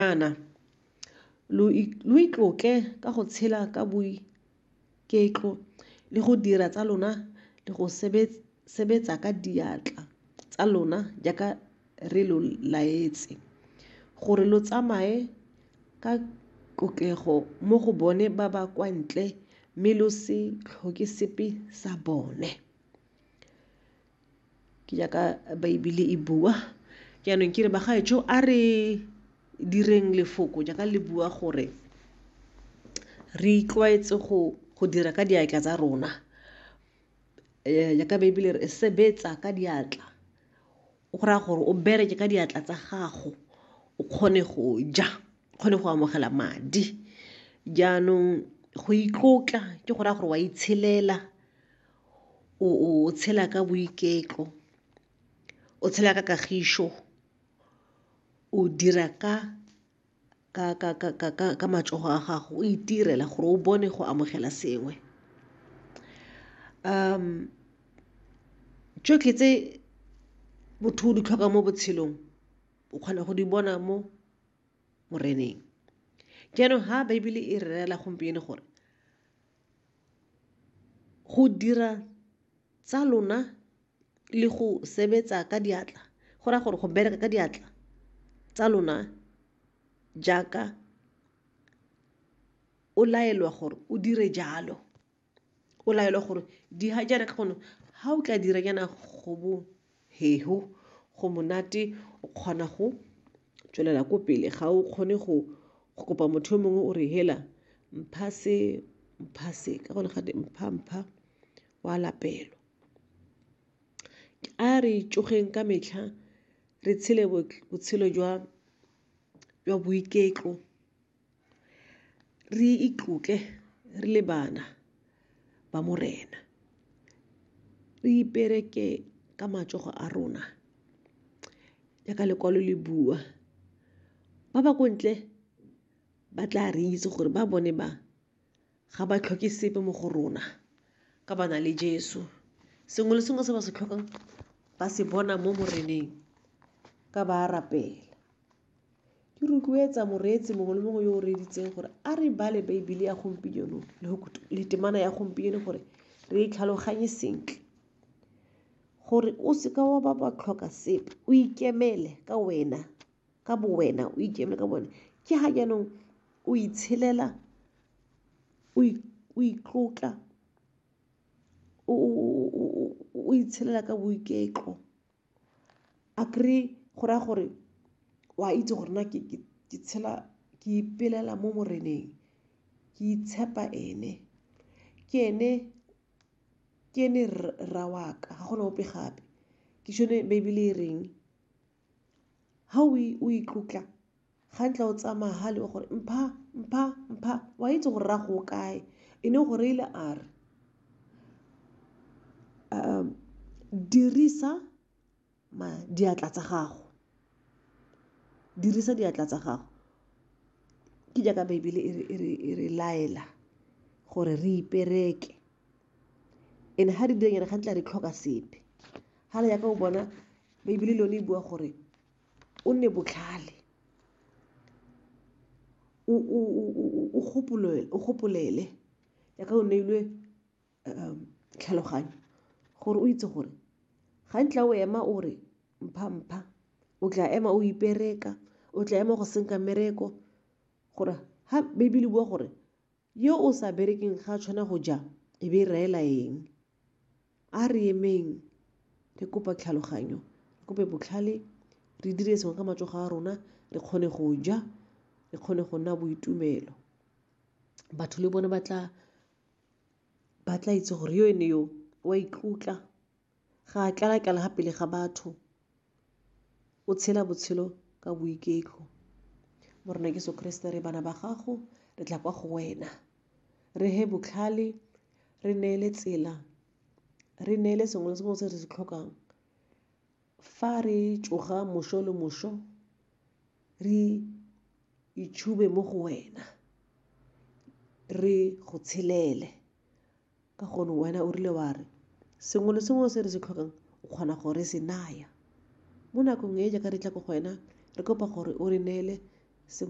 Jaana, lo itlotle ka go tshela ka boiketlo le go dira tsa lona le go sebetsa ka diatla tsa lona jaaka re lo laetse, gore lo tsamaye ka tlotlego mo go bone ba ba kwa ntle mme lo se tlhoke sepe sa bone. Ke jaaka Baebele e bua. Jaanong ke re bagaetsho a re direng lefoko jaaka le bua gore re itlwaetse go go dira ka diatla tsa rona. Jaaka Baebele e re sebetsa ka diatla o go raya gore o bereke ka diatla tsa gago o kgone go ja, o kgone go amogela madi. Jaanong go itlotla ke go raya gore wa itshelela. o tshela ka boiketlo, o tshela ka kagišo, o dira ka matsogo a gago, o itirela gore o bone go amogela sengwe. Tsotlhe tse motho o di tlhokang mo botshelong o kgona go di bona mo Moreneng. Jaanong ha Baebele e re rela gompieno gore. Go dira tsa lona le go sebetsa ka diatla go raya gore go bereka ka diatla tsa lona jaaka o laelwa gore o dire jalo, o laelwa gore di ha jaana ka gonne ha o tla dira jaana go bo Heho, go monate o kgona go tswelela ko pele ga o kgone go go kopa motho yo mongwe o re hela mpha se mpha se ka gone gate mpha mpha wa lapelo a re tsogeng ka metlha re tshele botshelo jwa jwa boiketlo Re itlotle re le bana ba Morena, re ipereke ka matsogo a rona jaaka lekwalo le bua. Ba ba ko ntle ba tla re itse gore ba bone ba Ga ba tlhoke sepe mo go rona ka ba na le Jesu. Sengwe le sengwe se ba se tlhokang ba se bona mo Moreneng ka ba rapela. Ke rotloetsa moreetsi mongwe le mongwe yo o reeditseng gore a re bale Baebele ya gompieno le temana ya gompieno gore re e tlhaloganye sentle gore o seka wa ba ba tlhoka sepe o ikemele ka wena. ka bo wena o ikeme ka bone ke ha jaanong o itshelela o itlotla o itshelela ka boiketlo a kry go raya gore o a itse gore na ke tshela ke ipelela mo moreneng ke itshepa ene ke ene ke ene rra waka ga gona ope gape ke sone baebele e reng Ga o itlotla ga ntla o tsamaya ga le gore mpha, mpha, mpha o a itse gore raya go kae e ne gore ile a re dirisa diatla tsa gago, dirisa diatla tsa gago ke jaaka baebele e re laela gore re ipereke. and-e ga re dira jaana ga nkitla re tlhoka sepe fela jaaka o bona baebele le yone e bua gore o nne botlhale, o gopolele jaaka o neilwe tlhaloganyo gore o itse gore ga nkitla o ema o re mpha-mpha, o tla ema o ipereka, o tla ema go senka mmereko gore ga baebele e bua gore. Yo o sa berekeng ga a tshwana go ja, e be e raela eng? A re emeng re kopa tlhaloganyo, re kope botlhale, re dire sengwe ka matsogo a rona, re kgone go ja, re kgone go nna boitumelo. Batho le bone ba tla itse gore yo ene yo o a itlotla. Ga a tlala-tlala ga pele ga batho, o tshela botshelo ka boiketlo. Morena Jesu Kriste re bana ba gago, re tla kwa go wena. Re he botlhale, re neele tsela, re neele sengwe le sengwe se re se tlhokang. Fa re tsoga moso le moso, re itshube mo go wena, re go tshelele. Ka gonne wena o rile wa re, sengwe le sengwe se re se tlhokang o kgona go re se naya. Mo nakong e jaaka re tla ko go wena, re kopa gore o re neele sengwe.